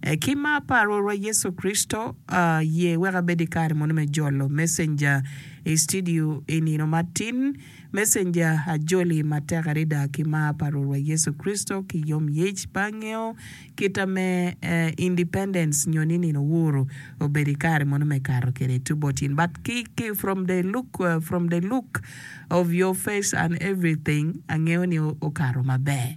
Ki mar pa Rwotwa Yecu Kricito, aye wek abed i kare moni me jolo messenger i studio i nino matin. Messenger, ajoli matek adada ki mar pa Rwotwa Yecu Kricito ki yom yec pe angeyo kita me independence nyo ni nino uhuru obedo i kare moni me kato kede tubo tin but ki ki from the look from the look of your face and everything angeyo ni okato maber.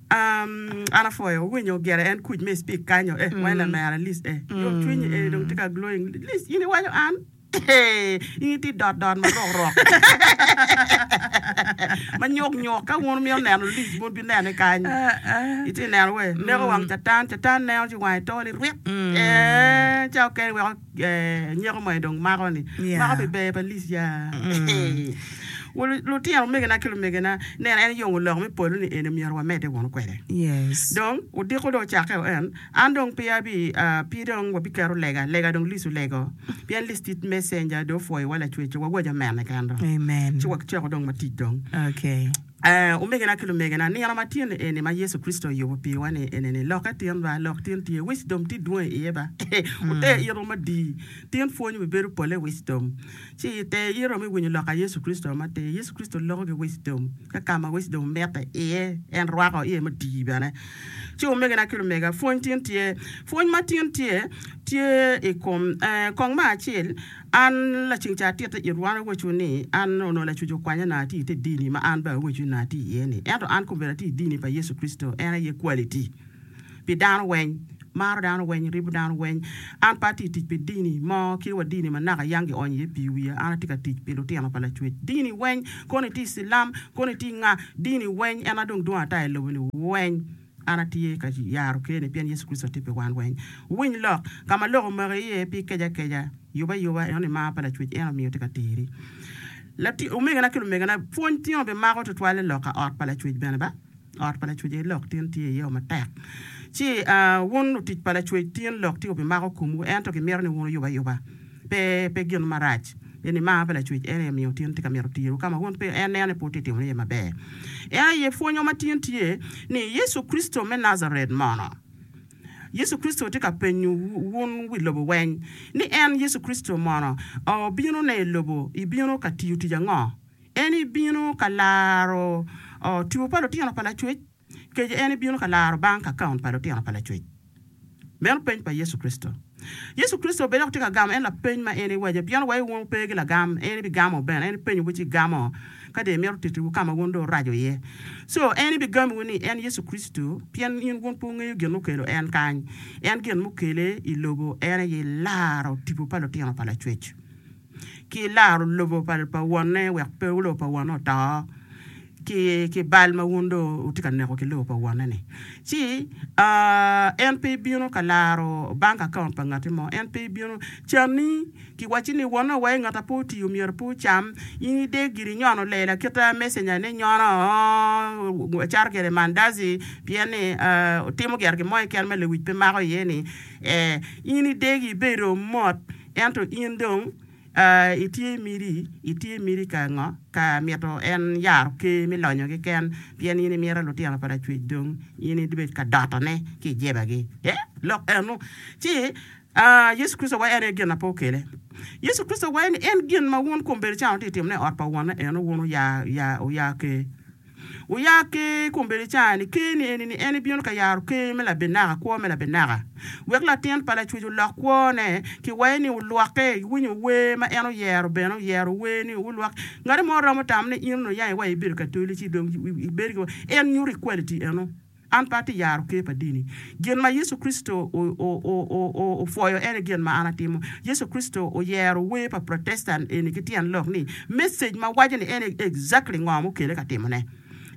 An apwoyo winyo gire en kuc me speak kanyo eh wai lamera Liz eh yom cwiny eh dong tye ka glowing Liz in iwaco an eh in itye dot dot marok rok manyok nyok ka wun wumito neno Liz wun bi nene kany itye neno weh neko wang catan catan neno ci wange tol irwit eh ca okene weko nyeko mo aye dong mako ni mako pi ber pa lic ya lutino omegina ki lumegina neno en yongo lok me polo ni eni myero wa mede wunu kwede dong odiko dong ocake o en an dong pe abi pe dong wa bi keto lega lega dong lic olego pien lic tye messenger dong opwoyo wa lacwec wa waco mene kendo ci wa ceko dong wa tic dong. Ee, omegina ki lumegena, nino matyen eni ma Yecu Kricito oyubo piwa-ni enene. Lokke tin ba, lok tin tye. Wisdom tye dwong i iye ba. Wute ito madii, tin pwony bibedo pole wisdom. Ci ite ito me winyo lok a Yecu Kricito matir. Yecu Kricito loko ki wisdom, ka ka ma wisdom omete iye, en rwako iye madii bene. Ci omegina ki lumega, pwony tin tye. Pwony ma tin tye, tye i kom, ee, kong ma acel. An, laceng ca atitte it wan awecu ni, an onongo lacuc okwanya nanga ati ite dini ma an bene awecu ni nanga ati iye ni. Ento an kombeddi ati idini pa Yecu Kricito, en aye quality pi dano weny, maro dano weny, ribo dano weny. An pe ati tic pi dini mo kit wa dini ma naka yang gionyo iye pii wiya, an ati ka tic pi lutino pa Lacwec. Dini weny, kono iti Cilam, kono iti nga, dini weny, en adong dwong ata ilobo ni weny. An atye ka yaro ker-ni pien Yecu Kricito tye pi wan weng. Wuwiny lok, Ka ma lok omaki iye pi keco akeca, yub ayuba, eno ni mar pa Lacwec en omiyo itye ka teri. Latin, omegina ki lumegina, pwony tingo bi mako twatwal i lok ka ot pa Lacwec bene ba. Ot pa Lacwec aye lok tin tye iye-o matek. Ci, aa, wun lutic pa Lacwec, tin lok tingo bi mako komwu, ento kimito ni wun oyub ayuba. Pe, pe gin marac. Eni mar pa Lacwec, ento en miyo otin tye ka mito tiru ka ma wun pe en neno ni pud tye timone iye maber. En aye pwonyo ma tin tye ni Yecu Kricito me Najaret mono. Yecu Kricito tye ka penyo wun wi lobo weny ni en, Yecu Kricito, mono obino ne i lobo ibino ka tiyo tic ango? En ibino ka laro two pa lutino pa Lacwec? Kec en bino ka laro bang kakaon pa lutino pa lacwec. Meno peny pa Yecu Kricito. Yecu Kricito bed dok tye ka gamo en lapeny ma en iwaco pien wa iwungo pe ki lagam en ibigamo bene en ipenyo wu ci igamo ka de imito titi wu kama wun dong uraco iye so en ibigami wu ni en Yecu Kricito pien in wun pe wungeyo gin mukelo en kany en gin mukele ilobo en aye laro tipo pa lutino pa lacwec. ki laro lobo pa wonne wek pe lobo pa wonne oto ki bal ma wun dong wutye ka neko ki lobo pa wonne-ni. Ci en pe bino ka laro bank account pa ngatti mo, en pe bino canni ki wacci ni wonne wa ngat ma pe otiyo myero pe ocam, in ide giri inyono lela aketa messenger ni nyono acato kwede mandazi pien ni timo gire gin mo keken ma lewic pe mako iye-ni ee, in idegi ibedo mot. Ento in dong, aa, itye i miti, itye i miti ka ngo? Ka mito en yaro ker me lonyo keken, pien in imito lutino pa lacwec dong in ibed ka dotone ki i jebagi. Ee, lok eno. Ci, aa, Yecu Kricito wayo en aye gin na pe okele. Yecu Kricito wayo ni en gin ma wun kombeddi can wutye ka timone i ot pa Wonne eno, wun wuya, wuya, wuya ker. Wuya ker i kom belicani, ker ni eni ni en ebino ka yaro ker me labenaka, kwo me labenaka, wek latin pa lacwec olok kwone, ki waye ni wulwoke, iwinyo wer ma en oyero bene oyero wer ni wulwok, ngati mo romo tamo ni in onongo iyange wa ibedo katolici dong ibedo ki wa, en nyuto equality eno. An pe atye yaro ker pa dini. Gin ma Yecu Kricito opwoyo ene gin ma an atimo. Yecu Kricito oyero wer pa Protestant eni ki tyen lok ni, Message ma waco ni ene exactly ngo ma okele ka timone.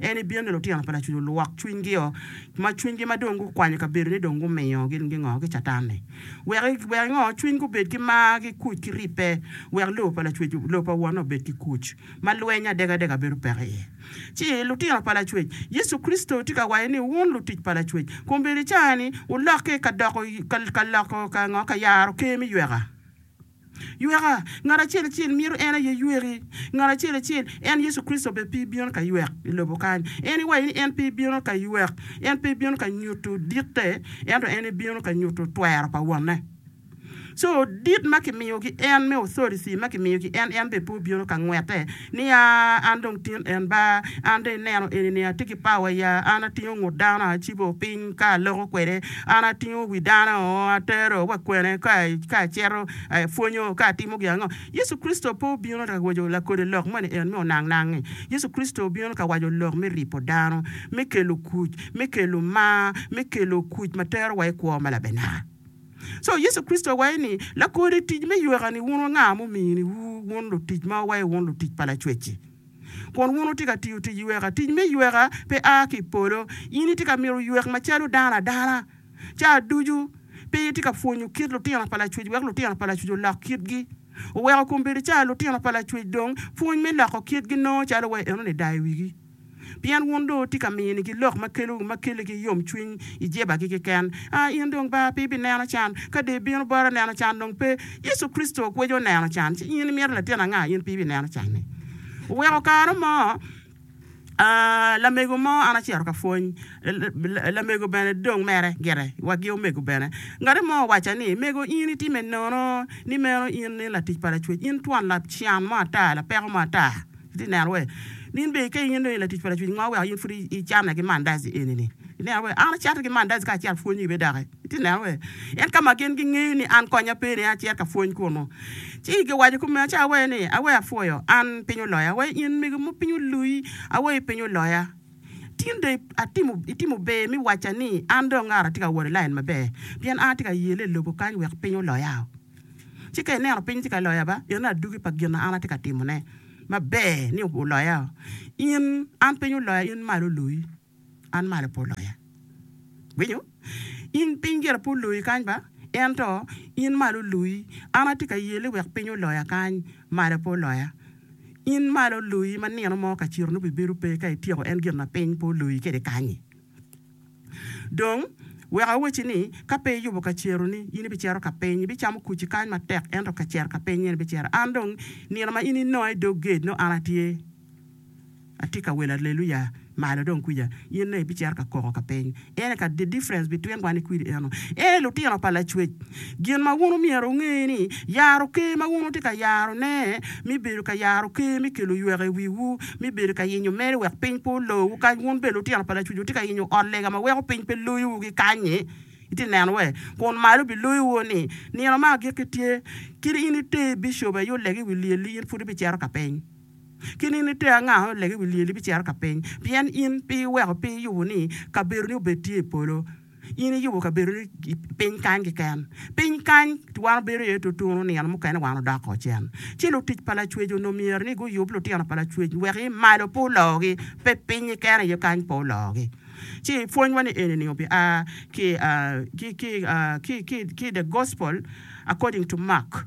Ene bino ni lutino pa lacuc olwok cwiny gi o ma cwiny gi ma dong gu kwanyo kabedo ni dong gu miyo gin gi ngo ki catan ni. Wek wek ingo cwiny gu bed ki mar ki kuc ki ribbe wek lobo pa lacwec lobo pa wonne obed ki kuc ma lweny adega adega bedo peko iye. Ci, lutino pa Lacwec, Yecu Kricito tye ka waco ni wun lutic pa Lacwec, kombeddi caani wulokke ka doko, ka, ka loko, ka ngo? Ka yaro ker me yweka. Yweka! Ngat acel acel mito en aye yweki. Ngat acel acel. En, Yecu Kricito, be pe bino ka ywek i lobo kany. En iwaco ni en pe bino ka ywek. En pe bino ka nyuto ditte, ento en ebino ka nyuto twero pa Wonne. Co dit ma kimiyo ki en me authority ma kimiyo ki en, en bene pe obino ka ngwete ni, Aa, an dong tin en ba, an dong ineno eni ni atye ki power ya, an atingo ngut dano acibo piny ka aloko kwede, an atingo wi dano atero wa kwene ka ka acito apwonyo ka atimo gin ango. Yecu Kricito pe obino ka waco lakode lok moni en me onang nang-ngi. Yecu Kricito obino ka waco lok me ripo dano, me kelo kuc, me kelo mar, me kelo kuc ma tero wa i kwo ma labenara. Co Yecu Kricito owaco ni, Lakor i tic me yweka-ni wun nga ma ominiwu wun lutic ma wawaco wun lutic pa Lacwec-ci? Kun wun wutye ka tiyo tic yweka. Tic me yweka pe a ki i polo. In itye ka mito ywek macalo dano adana ca ducu. Pe itye ka pwonyo kit lutino pa Lacwec wek lutino pa Lacwec olok kitgi. Oweko kun bedo ca lutino pa Lacwec dong pwony me loko kitgi nongo calo wa enoni dayo wigi. pien wun dong wutye ka minigi lok ma kelo ma keligi yomcwiny i jebagi keken. A In dong ba pe ibineno can, ka dee ibino bota neno can dong pe. Yecu Kricito okweco oneno can, ci in imito latin anga in pe ibineno can-ni? Oweko kare mo, a lamego mo an acito ka pwony, la lamego bene dong mere gire, wagi omego bene, ngati mo owacca ni, Mego in itime nono, ni meno in ni latic pa Lacwec, in twon lacan mo ata, lapeko mo ata. Itye neno we? Nin bene ka in inongo i latic pa lacwic ngo weko in pud icane ki mandaci eni-ni? Ineno we? An acate ki mandaci ka acito pwonyo ibe doki. Itye neno we? En ka ma gin gingeyo ni an konya pe ni acit ka pwony kunu. Ci igi owaco kome aca awe ni, Awe apwoyo, an piny oloya. Awe in mego mo piny olui. Awe i piny oloya. Tin dong atimo, itimo ber mi wacca ni an dong ngato atye ka wot i lain maber, pien an atye ka yele i lobo kany wek piny oloya-o. Ci ka ineno piny tye ka loya ba, pien adugi pa gin ma an atye ka timone maber ni oloya, in, an piny oloya, in malo oloyi, an malo pe oloya. Winyo? In piny gire pe oloyi kany ba, ento in malo oloyi. An atye ka yeli wek piny oloya kany, malo pe oloya. In malo oloyi ma nino mo ka ciro nongo bibedo pe ka ityeko en gin ma piny pe oloyi kwede kany-nyi. Dong, wek awacci ni, ka pe iyubo kaceroni, in ibicero ka piny, ibicamo kuci kany matek, ento ka cer ka piny nyen ibicero an. Dong, nino ma in inonga i dog gate, nongo an atye, atye ka welo aleluya malo dong kwica, in nongo ibicero ka koko ka piny. Ene ka the difference between wan ki kwidi eno. Ee, lutino pa Lacwec, gin ma wun omyero wunge ni, yaro Ker ma wun wutye ka yarone me bedo ka yaro Ker me kelo yweko i wiwu, mi bedo ka yenyo mere wek piny pe olowu kany. Wun bene lutino pa lacuc wutye ka yenyo ot lega ma weko piny pe loyowu ki kany-nyi. Itye neno wee? Kun malo biloyowu ni, Nino ma agikki tye. Kit in ite bicop aye oleg i wi lyelli, in pud ibicito ka piny. Kit in ite anga aye oleg i wi lyelli ibicito ka piny, pien in pe iweko pe iyubo ni kabedoni obed tye i polo. In iyubo kabedoni piny kany keken. Piny kany wan wabedo iye tutunu, nino mukene wan odoko cen. Ci lutic pa Lacwec onongo myero ni guyub lutino pa Lacwec wek i malo pe ologi, pe pinyi kene aye kany pe ologi. Ci pwonywa ni eni-ni obia ki i The Gospel According to Mark.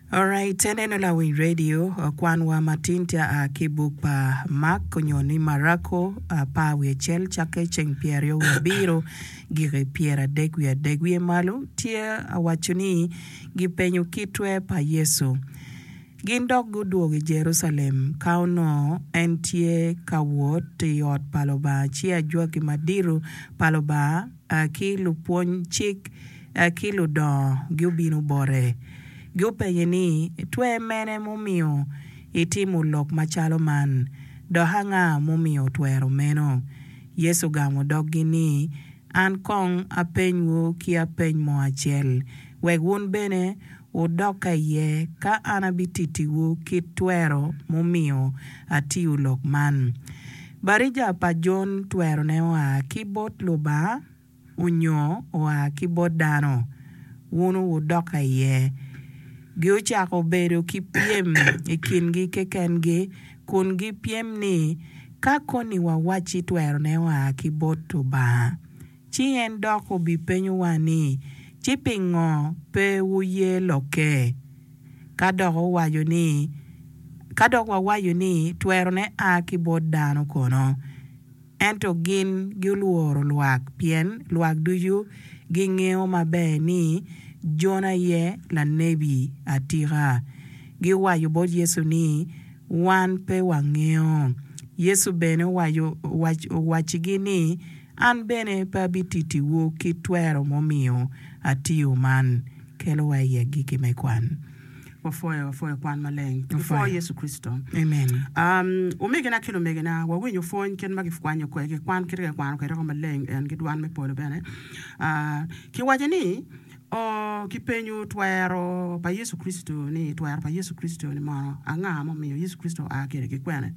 Alright aneno lawiny radio kwan wa matin tye aa ki buk pa Mark onyo ni Marako apar wiye acel cakke ceng pyer aryo wiye abiro giki pyer adek wiye adek wiye malo tye awaco ni gi penyo kitwe pa Yecu gin dok gudwogo i Jerucalem ka onongo en tye ka wot i ot pa Lubanga ci ajwaki madito pa Lubanga ki lupwony cik ki ludongo gubino bote, gupenye ni, Twer mene mumiyo itimo lok macalo man, dok anga mumiyo otwero meno? Yecu ogamo doggi ni, An kong apenywu ki apeny mo acel, wek wun bene Wudoka iye ka an abitittiwu kit twero mumiyo atiyo lok man. Batija pa Jon twerone oa ki bot Lubanga onyo oa ki bot dano? Wunu wudoka iye. Giocako bedo ki pyem i kingi kekengi kun gipyem ni, Ka koni wawacci twerone oa ki bot Lubanga, Ci en dok obipenyowa ni, Ci pingo pe wuye lokke? Ka dok owaco ni, Ka dok wawaco ni, 'Twerone a ki bot dano' kono? Ento gin gulworo lwak, pien lwak ducu gingeyo maber ni Jona aye lanebi atika. Giwaco bot Yecu ni, Wan pe wangeyo. Yecu bene owaccigi ni, An bene pe abititiwu kit twero mumiyo atiyo man. Kelo wa i agikki me kwan. Wapwoyo, wapwoyo kwan maleng. Wapwoyo Yecu Kricito. Amen. Omegina ki lumegina, wawinyo pwony kit ma gikwanyo kwede, gikwan kit ma gikwano kwede woko maleng en ki dwan me polo bene. Kiwaco ni, O, kipenyo twero pa Yecu Kricito-ni, twero pa Yecu Kricito-ni mono, anga ma omiyo Yecu Kricito oa kede ki kwene?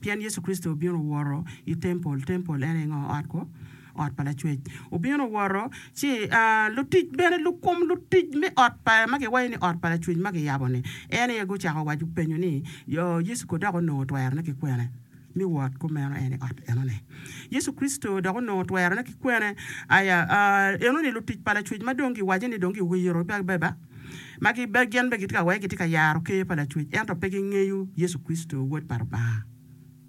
Pien Yecu Kricito obino owoto i tempol. Tempol en aye ngo? Ot kwo, ot pa Lacwec. Obino owoto, ci lutic bene, lukum lutic me ot pa, ma giwaco ni ot pa Lacwec ma giyabo-ni, en aye gucako waco, penyo ni, Yecu ko dok onongo twerone ki kwene me wot ku meno en i ot enoni? Yecu Kricito dok onongo twerone ki kwene? Aya, aa, enoni lutic pa Lacwec ma dong giwaco ni dong giwiro beba. ma gin bene gitye ka wacce ni gitye ka yaro Ker pa Lacwec ento pe gingeyo Yecu Kricito, Wod pa Lubanga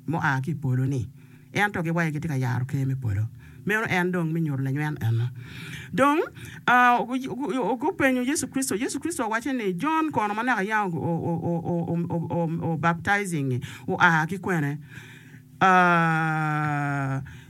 mua ki i polo-ni. Ento giwaco ni gitye ka yaro Ker me polo. Meno en dong me nyuto lanyweno eno. Dong, gupenyo Yecu Kricito, Yecu Kricito owacce ni, Jon kono ma naka yam obaptijingngi oa ki kwene?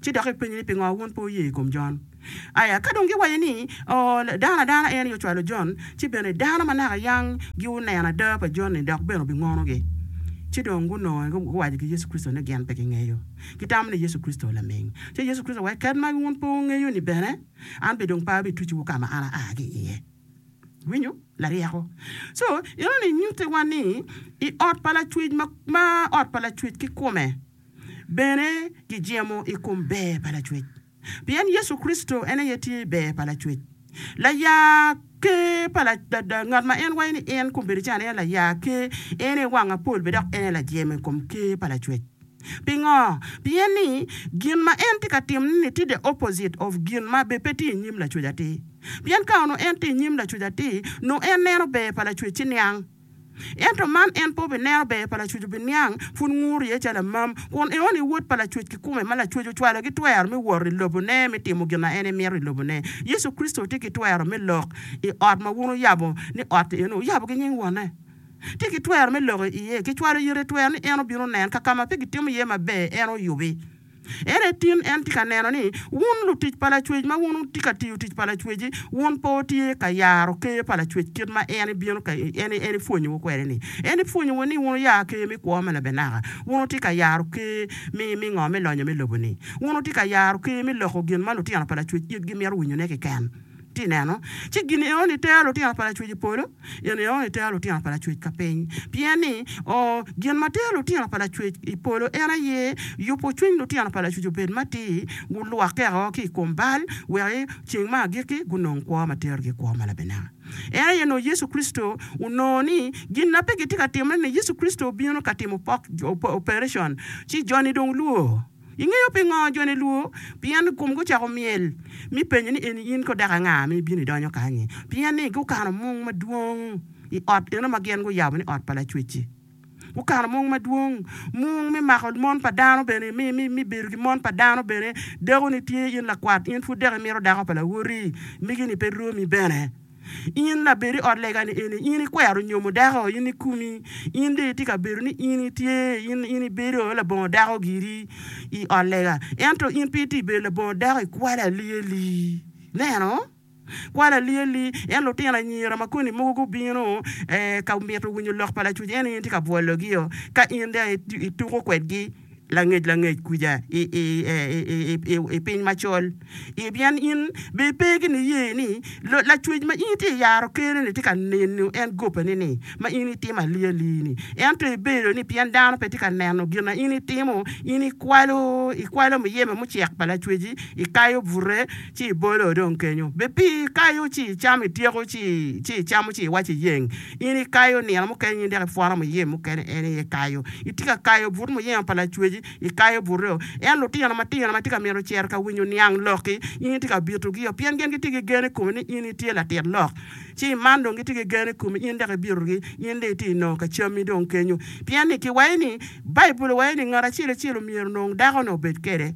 Ci dok epenye ni, Pingo wun pe wuye i kom Jon? Aya ka dong giwaco ni, Oo, dano adana en aye ocwalo Jon, ci bene dano ma naka yang guneno ada pa Jon-ni dok bene obingonogi. Ci dong gunongo guwaco ki Yecu Kricito ni gin pe gingeyo. Gitamo ni Yecu Kricito laming. Ci Yecu Kricito owaco, Kadi ma wun pe wungeyo-ni bene, an bene dong pe abitucuwu ka ma an aa ki iye. Iwinyo? Laryeko! Co, enoni nyutiwa ni i ot pa lacwec ma, ma ot pa lacwec kikome. Bene, kijemo i kom ber pa Lacwec, pien Yecu Kricito en aye tye ber pa Lacwec. Laya Ker pa ngat ma en waco ni en kombeddi ca ni en aye Laya Ker, en aye Wang Apol bene dok en aye Lajemo i kom Ker pa Lacwec. Pingo? Pien ni gin ma en tye ka timone-ni tye the opposite of gin ma bene pe tye i nyim Lacwec atir. Pien ka onongo en tye i nyim Lacwec atir, nongo en neno ber pa Lacwec-ci niang. Ento man en pe obineno ber pa lacwec obiniang pud nguru iye calo amam, kun eon i wod pa lacwec kikome ma lacwec ocwalogi twero me wot i lobo ne me timo gin a en emito i lobo ne. Yecu Kricito tye ki twero me lok i ot ma wun wuyabo ni ot eno wuyabo ki nying wonne. Tye ki twero me lok iye, kicwalo yet etwero ni en obino nen kakama pe gitimo iye maber en oyubi. Ere tin en tye ka neno ni wun lutic pa Lacwec, ma wun wutye ka tiyo tic pa Lacwec-ci, wun pe wutye ka yaro Ker pa Lacwec kit ma en ibino ka, en, en ipwonyowu kwede-ni? En ipwonyowu ni wun wuya Ker me kwo me labenaka? Wun wutye ka yaro Ker me, me ngo? Me lonyo me lobo-ni? Wun wutye ka yaro Ker me loko gin ma lutino pa Lacwec itgi mito winyone keken? Ci ineno, ci gin eno nitero lutino pa Lacwec i polo, gin eno nitero lutino pa Lacwec ka piny. Pien ni, o, gin ma tero lutino pa Lacwec i polo en aye yubo cwiny lutino pa Lacwec obed matir, gulwokke o ki i kom bal, wek i ceng me agikki gunong kwo ma terogi i kwo ma labenaka. En aye nongo Yecu Kricito. Onongo ni, gin ma pe gitye ka timme ni Yecu Kricito obino ka timo operation, ci joni dong lwor. Ingeyo pingo joni lwo? Pien komgi ocako myel, mi penyo ni, Eni in ko dok anga ma ibino idonyo kany-nyi? Pien ni gukano mung madwong i ot eno ma gin guyabo ni Ot pa Lacwecci. Gukano mung madwong, mung me mako mon pa dano bene, me bedo ki mon pa dano bene. Dakoni tye in lakwat, in pud dok imito dako pa lawoti, migi-ni pe romi bene. In labed i ot lega-ni eni, in ikwero nyomo dako, in ikumi, in dong itye ka bedo ni in itye, in, in ibedo labongo dako giri i ot lega, ento in pe itye i bedo labongo dako i kwalo alyeli. Ineno? Kwalo alyeli. Ento lutino anyira ma koni mogo gubino ee, ka mito winyo lok pa lacwec ento in itye ka bwologio, ka in dong ituko kwedgi. langec langec kwica i piny macol, pien in bene ipe ki niye ni Lacwec ma in itye ka yaro kene-ni tye ka neno en gobbeni ni ma in itimo ali ali-ni. Ento ibedo ni pien dano pe tye ka neno gin ma in itimo, in ikwalo ikwalo muyeme mucek pa Lacwec-ci, ikayo bute ci ibolo dong kenyo. Be pi ikayo ci icamo ityeko ci icamo ci iwaco iyeng? In ikayo nino mukene in dok ipwono muyem mukene en aye kayo. Itye ka kayo but muyemo pa Lacweci, ikayo buteo. En lutino matino ma tye ka mito cito ka winyo niang lokki, in itye ka bitogio pien gin gitye ki gen i komi ni in itye latit lok. Ci i man dong gitye ki gen i komi in dok ibitogi, in dong itye nongo ka cammi dong kenyo. Pien ni kiwaco ni, Baibul owaco ni ngat acel acel omyero onong dako nongo obed kwede.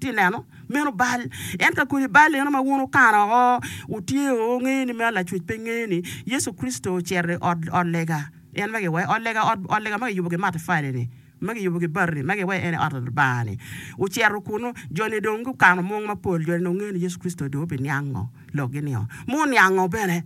Ti neno, meno bal. En ka kodi bal eno ma wun wukano oko, wutyeyo, wungeyo ni meno Lacwec pe ngeyo ni Yecu Kricito ocito i ot, ot lega. En ma giwaco, ot lega, ot, ot lega ma giyubo ki matafali-ni, ma giyubo ki bati-ni, ma giwaco ni en aye ot Lubanga-ni. Ocito kunu, jo-ni dong gukano mung mapol, jo-ni dong gungeyo ni Yecu Kricito dong obiniango lokgi nio, ma oniango bene.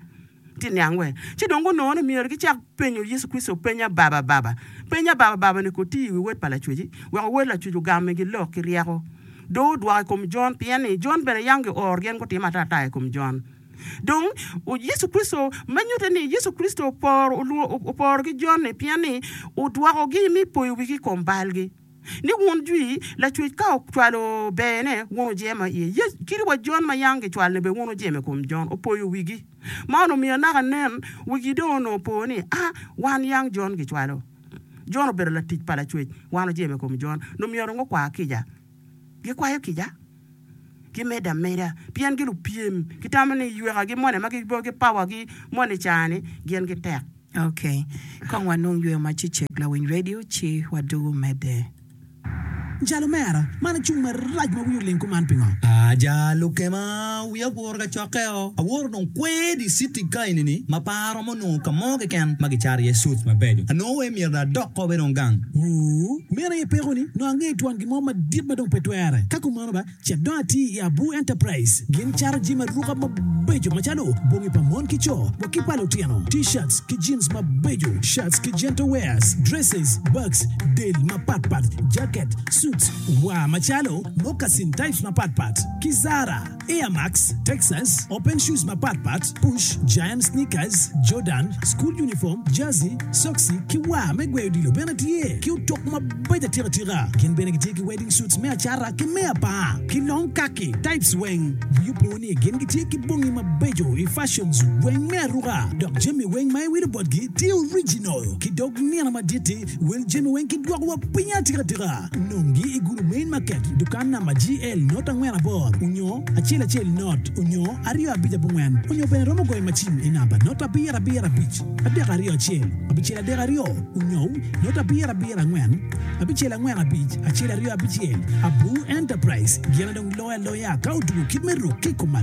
Ci niang wee. Ci dong gunongo ni myero gicak penyo Yecu Kricito peny ababababa. Peny abababani ko tye i wi wod pa lacweci, weko wod lacwec ogam migi lok ki ryeko. Do odwoko i kom Jon, pien ni Jon bene yam gioro gin gutimo atata i kom Jon. Dong, Yecu Kricito, me nyutte ni Yecu Kricito oporo, oporo ki Jon-ni, pien ni odwokogi me poyo wigi i kom balgi. ni wun jwi lacwec ka ocwalo bene wun ojemo i iye, Yecu kit wa Jon ma yam gicwalo ni bene wun ojemo i kom Jon opoyo wigi. Man omiyo naka nen wigi dong onongo opo ni a wan yang Jon gicwalo Jon obedo latic pa lacwec wan ojemo i kom Jon nongo myero nongo kwa kica gikwayo kica. ki medo ameda, pien gi lupyem, ki tamo ni yweka gi moni ma gibo ki power gi moni cani gin gi tek. Ok. Kong wa nung yweyo ma ci cek lawiny radio ci wa dugu mede. Jal omera, man cung marac ma wiye oling kuman pingo? Aja lukema, wiya. Awoto kacokke-o, awoto dong kwer i citi ka enini ma pe aromo nongo ka mo keken ma gicato iye suits mabeco. Anongo wai myero dong adok kop enong gang. Wuu! Meno aye pekoni, nongo angeyo twon gin mo madit ma dong pe twere. Ka kumeno ba, cit dong ati i Abu Enterprise. Gin cato jami aruka mabeco macalo bongi pa mon ki co wa ki pa lutino, T-shirts ki jeans mabeco, shirts ki gentle wears, dresses, bags, del mapat pat, jacket, suits, waa macalo, moccasin types mapat pat, ki Zara. Air Max, Texas, Open Shoes mapat pat, Push, Giant Sneakers, Jordan, School Uniform, Jersey, Soksi, ki War me gweyo odilo bene tye ki otok mabaco atika atika. Gin bene gitye ki Wedding Suits me acata ki me apar, ki long kaki types weng. Wiyo po ni gin gitye ki bongi mabeco i fashions weng me aruka, dok jami weng ma iwilo botgi tye original ki dog nino madit-ti. Wel jami weng ki dwoko wa piny atika tika. Nong gi i gulu main market dukan namba GL not angwen abor onyo acel acel not onyo aryo abic abongwen onyo bene romo goyo macin i namba not abiro abiro abic adek aryo acel abicel adek aryo onyo not abiro abiro angwen abicel angwen abic acel aryo abicel Abu Enterprise gin adong loyo aloya ka otugo kit me ruk ki i kom